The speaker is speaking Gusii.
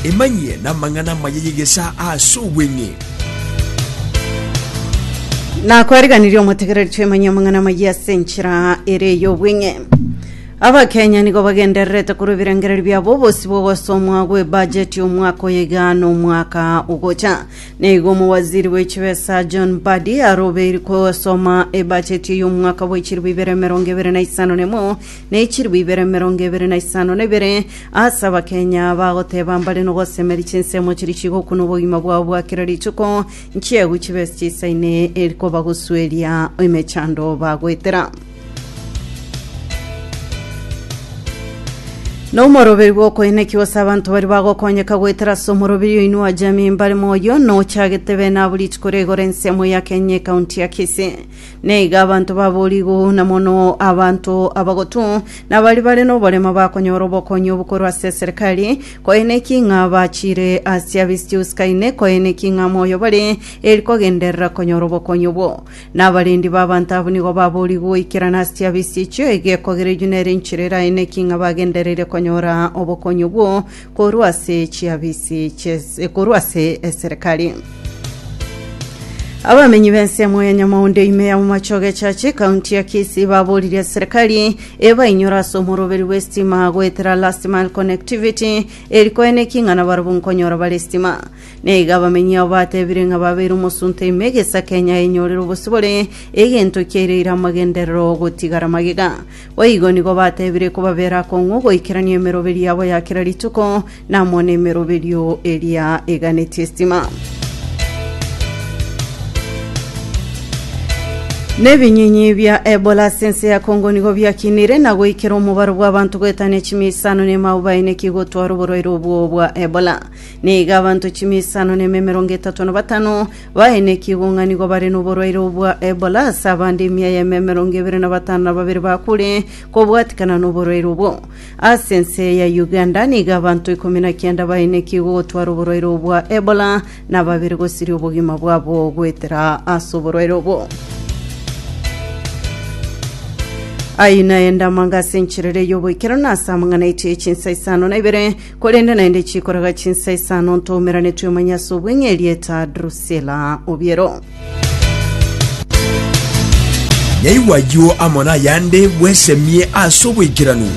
Emanyie namang'ana amaya y'egesaa ase obweng'e. Nakwariganirie omotegereri twemanyie amang'ana amayia ase enchera ere ey'obweng'e. Abakenya nigo bagendererete korwa ebirengererio biabo obosi bw'ogosomwa gw'ebajeti omwaka oyo iga n'omwaka ogocha. Neigo omowaziri bw'echibesa John Mbadi arobeiri kogosoma ebajeti ey'omwaka bw'echiribu ibere emerongo ebere na isano nemo ne chilifu ibere emerongo ebere na isano na ibere ase abakenya bagoteba mbare nogosemeria chinsemo chiria chigokuna obogima bwabo bwa kera rituko nchiegu chibe ase chisaine eri kobagosueria emechando bagoetera na omoroberi bw'okoenekigwa ase abanto bari bagokonyeka goetera ase omoroberi oinwa jamii mbare moyo nochagete bene abo rituko rigore ensemo ya kenya ekaunti ya kisii Na iga abanto baboria igou na mono abanto abagotu, na baria bare noborema bakonyora obokonyi obo korwa ase eserekari, koeneki ng'a bachire ase Abisius Kaine, koeneki ng'a moyo bare, eri kogenderera konyora obokonyi obwo. Na abarendi b'abanto abwo nigo baboria igou ikerana ase chiabisi echio, egekogera enyunyere enchera eraeneki ng'a bagendereire konyora obokonyi obwo, Korwa ase chiabisi chi'es- korwa ase eserekari abamenyi b'ensemo ya nyamaundi ime ya momachoge chache kaunti ya kisii baboririe serikali ebainyore ase omoroberi bw'estima goetera last mile connectivity eri koeneki ng'a nabarabwo nkonyora bare estima naiga abamenyi abo batebire ng'a babeire omosunte ime egesa kenya enyorire obosibore egento kiaireire amagenderero gotigara magega Boigo nigo bateebire kobabera akong'u goikerania emeroberi yabo ya kera rituko, namo nemeroberio eria eganetie estima. Nebinyinyi bia Ebola ase ense ya Congo nigo biakinire na goikera omobaro bw'abanto goetania chimia isano na emao baenekigwe gotwara oborwaire obwo bwa Ebola. Nigo abanto chimia isano na ime emerongo etato na batano Baenekigwe onga nigo bare noborwaire obo bwa Ebola, ase abande emia y'eme emerongo ebere na batano na babere bakure kobwatikana noborwaire obwo. Ase ense ya Uganda nigo abanto ikomi na kianda baenekigwe ogotwara oborwaire obo bwa Ebola, na babere gosiria obogima bwabo goetera ase oborwaire obwo. Ayio naende amangase encherere y'oboikeranu ase amang'ana aitire chinsa isano na ibere, Korende naende chikoroga chinsa isano ntoumerane twemanye ase obweng'e erieta Drusila obiero. Nyaigwa ayio amo nayande bwesemie ase oboikeranu.